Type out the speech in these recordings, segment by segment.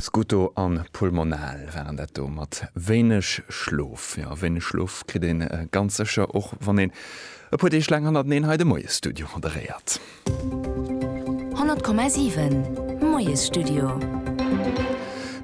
Scuto an Pulmonale waren dat do mat wéineg Schlof. Jo, wéineg Schlof kritt een ganz sécher och wann een e puer Deeg laang hannerteneen hei de Moiesstudio moderéiert. 100,7 Moiesstudio.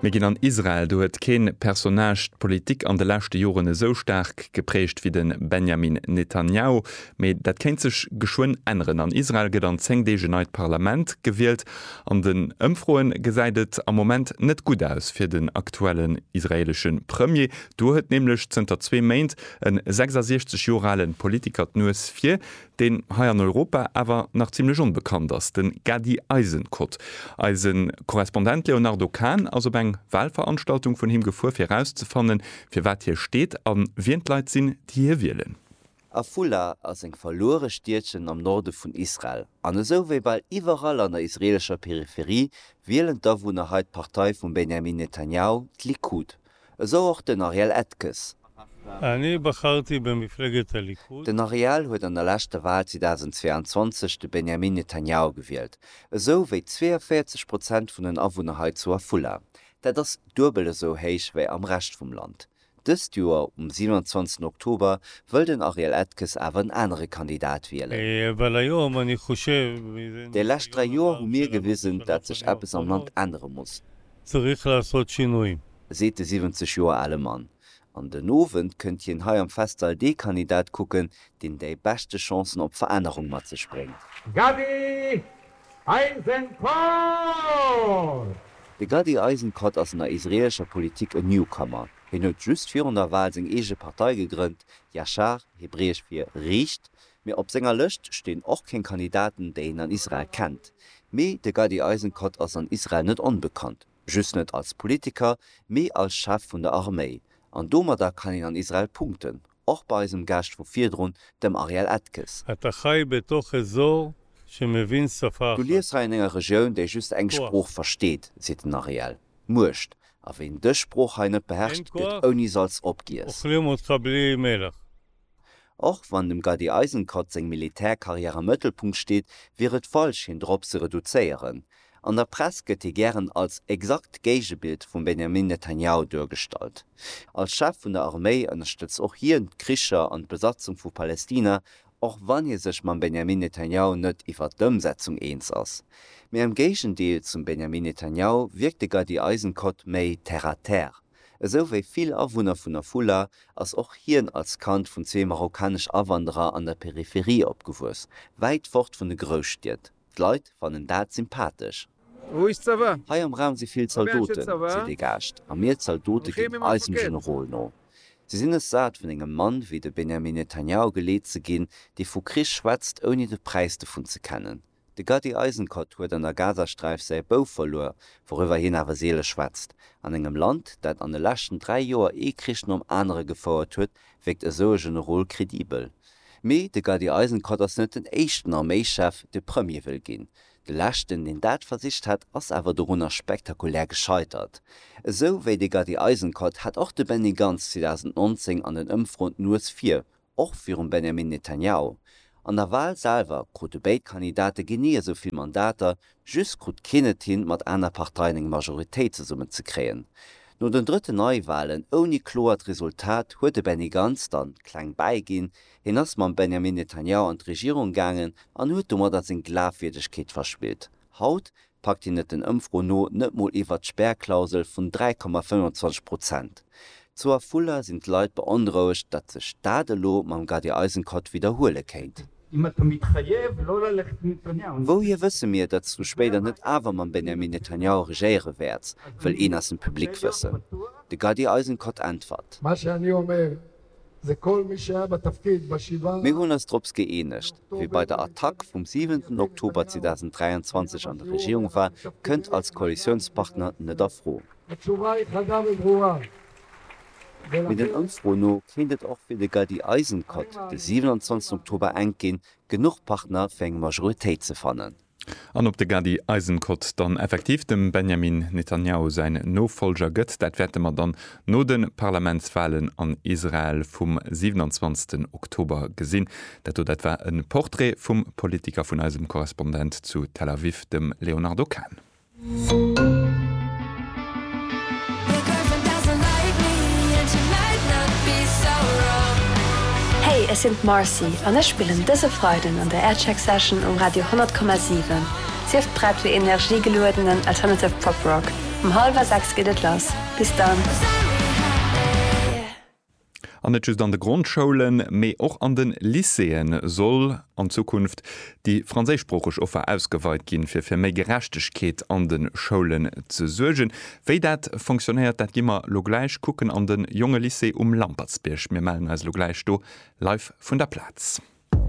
Mir ginn an Israel. Do huet kee Personnage d'Politik an de leschte Joren esou staark geprägt wéi de Benjamin Netanjahu. Mee dat kéint sech geschwënn änneren. An Israel gëtt an 10 Deeg en neit Parlament gewielt. An den Ëmfroe gesäit et am Moment net gutt aus fir den aktuellen israeelesche Premier. Do huet nämlech zënter zwee Méint e 66 Joer ale Politiker d'Nues vir, deen hei an Europa awer nach zimlech onbekannt ass, de Gadi Eisenkot. Eise Korrespondent Léonardo Kahn ass op eng Walveranstaltung vun him gefuer, fir erauszefannen, fir wat hie steet a wien d'Leit sinn, déi hie wielen. Afula ass eng verluere Stiedchen am Norde vun Israel, an esou wéi bal iwwerall an der israeelescher Peripherie wielen d'Awunner hei d'Partei vum Benjamin Netanjahu, d'Likud. Esou och den Ariel Etkes. Den Ariel huet an der leschter Wal 2022 de Benjamin Netanjahu gewielt, esou wéi 42 Prozent vun den Awunner hei zu Afula. Dat ass duebel esou héich wéi am Rescht vum Land. Dëst Joer um 27 Oktober wëll den Ariel Edkes awer en anere Kandidat wielen. Déi lescht 3 Joer hu mir gewisen, dat sech eppes am Land ännere muss, seet de 70 Joer ale Mann. An den Owend kënnt hien hei am Festsall dee Kandidat kucken, deen déi beschte Chancen op Verännerung mat sech bréngt. Eisenkot! De Gadi Eisenkot ass an der israeelescher Politik en Newcomer. Hien huet just virun der Wal seng eege Partei gegrënnt, Yashar, hebräesch fir riicht, mee op senger Lëscht stinn och keng Kandidaten, déi een an Israel kennt. Mee de Gadi Eisenkot ass an Israel net onbekannt, just net als Politiker, mee als Chef vun der Arméi. An domadder kann een an Israel punkten, Och bei eisem Gast vu virdrun, dem Ariel Etges. A ta chai be to che zo che me vin sa fa Du lies hei an enger Regioun, déi just eng Sprooch versteet, seet den Ariel. Muecht. A ween dës Sprooch hei net beherrscht, gëtt ouni Salz opgiess. Ochle mo tra ble me lach. Och wann dem Gadi Eisenkot seng Militärkarriär am Mëttelpunkt steet, wier et falsch, hien drop ze reduzéieren. An der Press gëtt hie gären als exakt Géigebild vum Benjamin Netanjahu duergestallt. Als Chef vun der Arméi ënnerstëtzt och hien d'Kricher an d'Besatzung vu Palestina, och wann hie sech mam Benjamin Netanjahu net iwwert d'Ëmsetzung eens ass. Mee am Géigendeel zum Benjamin Netanjahu wierkt de Gadi Eisenkot méi terre à terre. Esou wéi vill Awunner vun Afula ass och hien als Kand vun zwee marokkanesch Awanderer an der Peripherie opgewuess, wäit fort vun de Grousstied. D'Leit fannen dat sympathesch. Wou is d'Sava? Hei am Raum si vill Zaldoten, seet ee Gaascht, a mir Zaldote ginn eisem Generol no. Si sinn es sat, vun engem Mann wéi de Benjamin Netanjahu geleet ze ginn, dee vu Krich schwätzt, ouni de Präis dovun ze kennen. De Gadi Eisenkot huet an der Gazasträif säi Bouf verluer, wouriwwer hien awer seele schwätzt. An engem Land, dat an de leschten dräi Joer ee Krich nom anere gefouert huet, wierkt esou e Generol kredibel. Mee de Gadi Eisenkot ass net den éischten Arméischef, dee Premier wëll ginn. De leschten, deen dat versicht hat, ass awer dorunner spektakulär gescheitert. Esou wéi de Gadi Eisenkot hat och de Benny Gantz 2019 an den Ëmfroen d'Nues vir, och virum Benjamin Netanjahu. An der Wal selwer krute béid Kandidate genee esou vill Mandater Just krut keen et hin, mat aner Parteien eng Majoritéit zesummen ze kréien. No den drëtten Neiwahlen ouni kloert Resultat huet de Benny Gantz dann kleng bäiginn. Hien ass mam Benjamin Netanyahu an d'Regierung gaangen an huet domadder seng Glafwierdegkeet verspillt. Haut packt hien et den Ëmfroen no net mol iwwert d'Spärklausel vun 3,25 Prozent. Zu Afula sinn d'Leit beonrouegt, datt sech dat elo mam Gadi Eisenkot widderhuele kéint. Wouhier wësse mir, datt du spéider net awer mam Benjamin Netanyahu regéiere wäerts? wëll een aus dem Public wëssen. De Gadi Eisenkot äntwert. Mir hunn eis drops gëeenegt, Wie bei der Attack vum siwenten Oktober 2023 an der Regierung war, kënnt als Koalitiounspartner net a Fro. Mee den Ëmfroen no kéint et och fir de Gaddi Eisenkot de 27 Oktober enk ginn, genuch Partner fir eng Majoritéit ze fannen. An ob de Gaddi Eisenkot dann effektiv dem Benjamin Netanjahu säin Nofollger gëtt, dat wäerte mer dann no de Parlamentswalen an Israel vum 27 Oktober gesinn. Dat do, dat war e Portrait vum Politiker vun eisem Korrespondent zu Tel Aviv, dem Léonardo Kahn. Hey, ech sinn d'Marcy an ech spillen dëse Freiden an der Aircheck Session um Radio 100,7. Sief prett fir energiegeluedenen alternative Pop Rock. Um hallwer 6 geet et lass. Bis dann! An net just an de Grondschoulen, mee och an de Lycéeë soll an Zukunft déi franséischsproocheg Offer ausgeweit ginn, fir fir méi Gerechtegkeet an de Schoulen ze suergen. Wéi dat fonctionnéiert, dat gi mer elo gläich kucken an de Jongelycée um Lampertsbierg. Mir mellen eis elo gläich do live vun der Plaz.